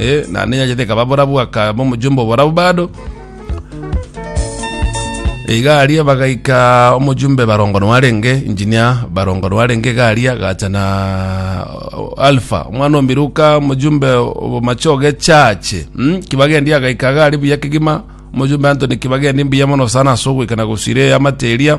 Eh, naende enyanchete ekaba borabu, akaba omojumba oborabu bado. Iga aria bagaika omojumbe barongo noarenge engineer barongo noarenge iga aria agacha na alfa omwana omiruka omojumbe obomachoge chache mm? kibagendi agaika iga aria buya kegima omojumbe antony kibagendi mbuya mono sana ase ogoika na gosira eyamate eria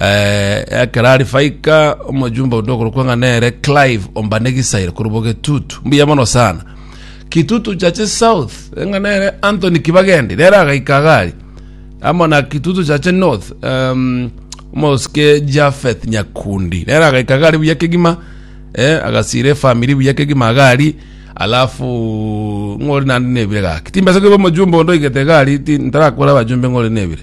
Eh, ekero ari faika omojumbe onde okorokwa ng'a nere clive ombane gisaire korobwa getutu mbuya mono sana kitutu chache south ng'a nere anthony kibagendi nere agaika gari amo na kitutu chache north um, omosike jafeth nyakundi nere agaika gari buya kegima eh, agasira efamiri buya kegima gari alafu ng'ori nandi nebire gaki timbesa kebe omojumbe onde oigete gari ti- ntarakwera abajumbe ng'ori nebire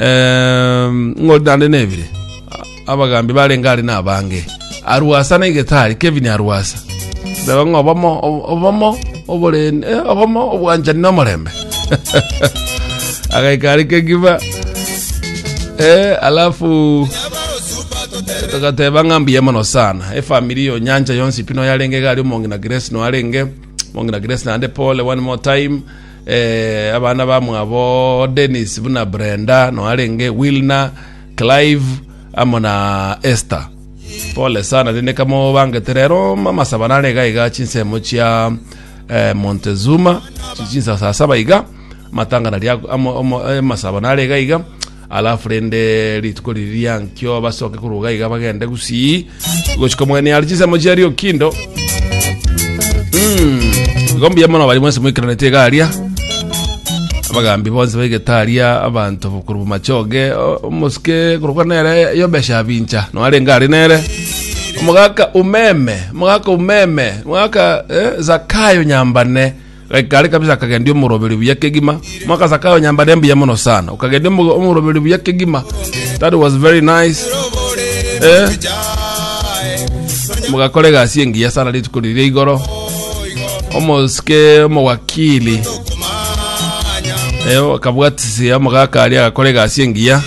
Ehm, ng'ori naende nebire abagambi barenge are nabange arwasa na igetari kevin arwasa reba ng'a obomo obomo oborende eh, obomo obwanchani na omorembe agaika are kegiba eh, alafu tugateba ng'a mbuya mono sana efamili yo nyanja yonsi pino yarenge gari omongina grace no arenge omongina grace naende pole one more time eh, abana bamwabo Dennis buna Brenda noarenge Wilna Clive amo na Esther pole sana rende kamo bangete rero mamasaba nare iga iga chinsemo chia eh, Montezuma chichinsasa saba iga matangana ria amo- amo- eh, masaba nare iga iga Alafu rende rituko riria nkio basoke korwa iga iga bagende gusii gochika omogeni are chisemo chiaria okindo Mm. igo mbuya mono bari mwensi moikaranete iga aria abagambi bonsi baigete aria abanto korwa machoge o- omosike korokwa nere yobesha abincha noarenge are nere omogaka umeme omogaka umeme omogaka eh, zakayo nyambane Gakaare kabisa akagendia omoroberi buya kegima. Mwaka Zakayo nyambare mbuya mono sana. Ukagendia omo- omoroberi buya kegima. That was very nice. Eh? Mugakora egasi engiya sana rituko riria igoro. Omosike omowakili. Eh, akabwatisia omogaka aria agakora egasi engiya.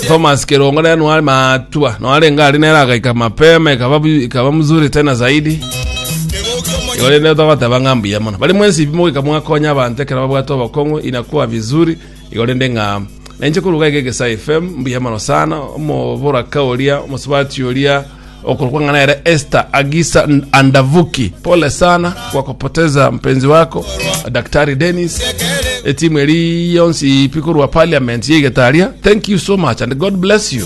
Thomas Kerongo naye nwari matua. Nwarenge ari nere agaika mapema ikaba bu- ikaba mzuri tena zaidi. Igo rende togoteba ng'a mbuya mono bari mwensi pi mogoika mwakonya abanto ekero babwate obokong'u inakuwa vizuri igo rende ng'a nainche korwa iga egesa fm mbuya mono sana omoboraka oria omosubati oria okorokwa ng'a nere Esther Agisa N- Andavuki pole sana kwa kupoteza mpenzi wako Daktari Dennis etimu eri yonsi ipi korwa parliament yeigetaria thank you so much and God bless you